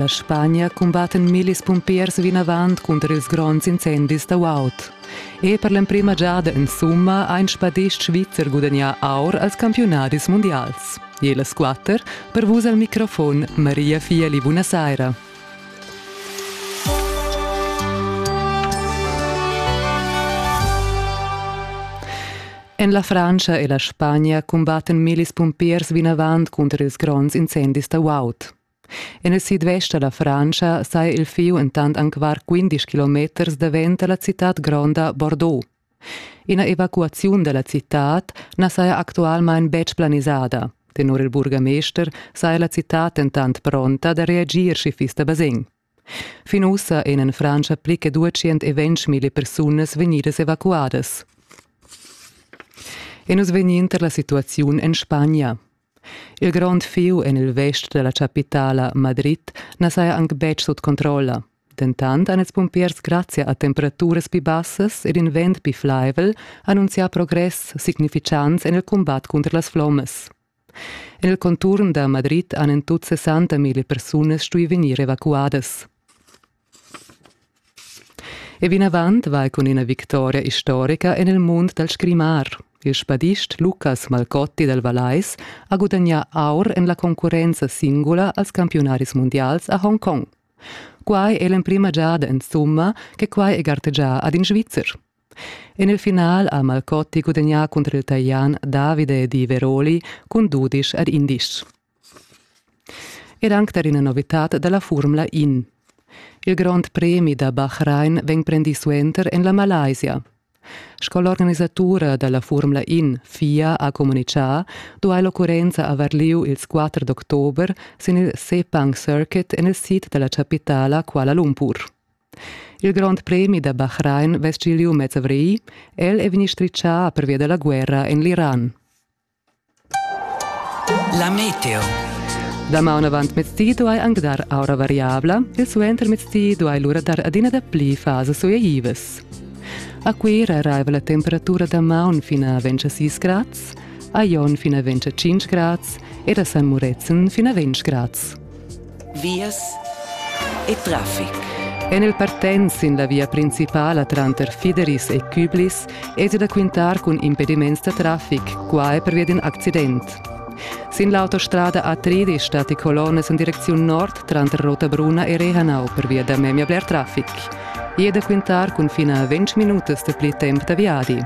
La Spagna cumbattan millis pumpiers vinavant cunter ils gronds incendis da Wout. E per l'emprima giada in summa ha in spadist svizzer gudagnà aur als campiunadis mundials. E las quatter per vus al microfon Maria Fieli, buonasera. En la Francia e la Spagna cumbattan millis pumpiers vinavant cunter ils gronds incendis da Wout. En il sidvest da la Frantscha saja il fieu entant anc var 15 kilometers davent da la citad gronda Bordeaux. Ina evacuaziun da la citad na saja actualmain betg planisada. Tenor il burgamester saja la citad entant pronta da reagir schi fiss da basegn. Fin ussa ein en Frantscha pli che duatschient e ventschmilli persunas vegnidas evacuadas. E nus vegnin tar la situaziun en Spagna. Il grond fiu en il vest della capitala Madrid na saja anc betg sut controlla. Dentant han ils pumpiers grazia a temperaturas pli bassas ed in vent pli flaivel annunzià progress significants en il cumbat cunter las flommas. El contuorn da Madrid han en tut sessanta mille persunas stui vegnir evacuadas. E vinavant vai cun ina victoria istorica en il mund dal scrimar. Il spadist Lucas Malcotti dal Valais ha gudagnà aur en la concurrenza singula als campiunaris mundials a Hongkong. Quai è l'emprima giada insumma che quai è gartegià ad in Svizzer. En il final ha Malcotti gudagnà cunter il Talian Davide Di Veroli cun dudisch ad indisch. Ed anc tar ina novitad da la Furmla In. Il grond premi da Bahrain vegn prendì suenter en la Malaysia. Sco l'organisatura da la Furmla In FIA ha communitgà, duai l'occurrenza avair lieu ils 4 d'october sin il Sepang Circuit en il sid da la chapitala Kuala Lumpur. Il grond premi da Bahrain vess giu liu mez avrigl. El è vegni stritschà pervia dalla guerra en l'Iran. La meteo. Damaun avant mezdi duai anc dar aura variabla e suenter mezdi duai lura dar adina dapli fasas suaivas. A Cuira arriva la temperatura da maun fin a 26 grads, a Jon fin a 25 grads ed a San Murezzan fin a 20 grads. vias e traffic. En il partent sin la via principala tranter Fideris e Küblis è da quintar cun impediments da traffic, quai pervia d'in accident. Sin l'autostrada A3 stat die Colonnes in direcziun nord tranter Rotabruna e Rehanau pervia da memia bler traffic. I è da quintar cun fino a 20 minutas da pli temp da viadi.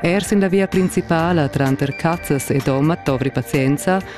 Er sin la via principala tranter Cazzas e Doma dovri pazienza,